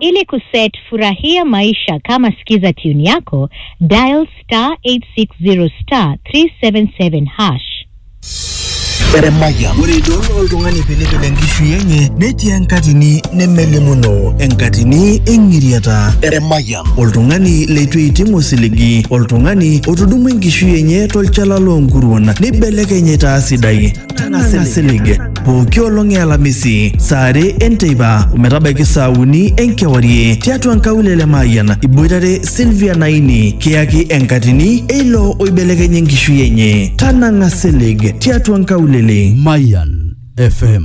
Ili kuset furahia maisha kama sikiza tune yako, dial star 860 star 377 hash. Eremaya. Ore idol oltung'ani piilipil enkishui enye netii enkatini nemelimuno, enkatini eng'iriata. Eremaya. Oltung'ani leitu eiting osiligi, oltung'ani otudumua enkishui enye tolchala loonkuruon neibelekeny aitaa sidai. Tang'asa silig pooki olong e Alamisi saa are enteipa ometabaiki saa uni enkewarie tiatua nkaulele Mayian iboitare Sylvia Naini kiyaki enkatini eilo oibelekenya enkishui enye. Tanang'a silig tiatua nkaulele. Mayan FM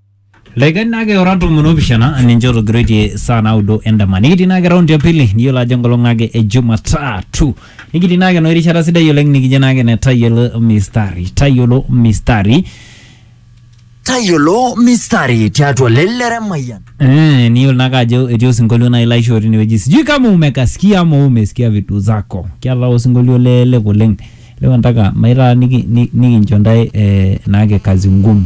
Laiken naake ora tomon opishana ninche otogiroitie saa naudo endama. Nikitii naake raundi ya pili niyiolo ajo enkolong naake e Jumatatu. Nikitii naake enoshi rishata sidai oleng nikijo naake ene tayiolo mistari. Tayiolo mistari. Tayiolo mistari tiatua lelere mayian. Eh, niyiolo naake ajo etii osinkolio nai laishoo tinewueji. Sijui kama umekasikia ama wewe umesikia vitu zako. Kiata osinkolio lelelek oleng. Leo nataka maitaa niki- ni- nikincho ntae eh, naake kazi ngumu.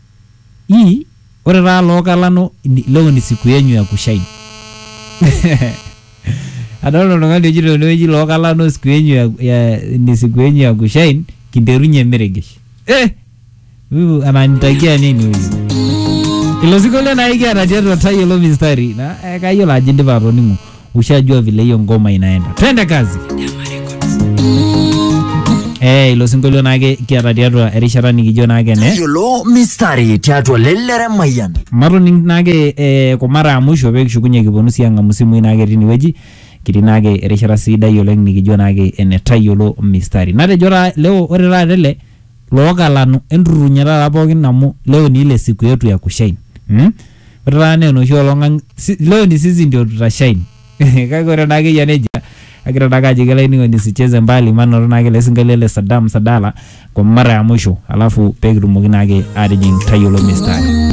I, ore taa loo kalano ni- leo ni siku yenyu ya kushine. Adolta oltung'ani ojito tenewueji loo kalano siku yenyu ya, ya, ni siku yenyu ya kushine kinterunye meregesh. Eh! Huyu ananitakia nini huyu? Ilo sinkolio naa ikiata tiatua tayiolo mistari. Na eh, kayiolo ajo indipa atoning'o. ushajua vile hiyo ngoma inaenda twende kazi Eh, ilo sinkolio naake kiata tiatua erishata nikijo naake ne Yiolo mistari tiatua lelere mayian. matoning naake eh, kwa mara ya mwisho pee kishukunye kiponu sii ang'amu simui naake tinewueji kitii naake erishata sidai oleng nikijo naake ene tayiolo mistari natejo taa leo ore taata ele Loo kalanu, enturrurunye taata pookin amu leo ni ile siku yetu ya kushain mm? Ore taata naa enoshi olong ang si, leo ni sisi ndio tutashain kake ore naake eyia nejia kagira naake ajoki olainining'oni usicheze mbali manoto naake ele sinkolio le Sadam Sadala kwa mara ya mwisho alafu pekitumoki naake atijing tayiolo mistari.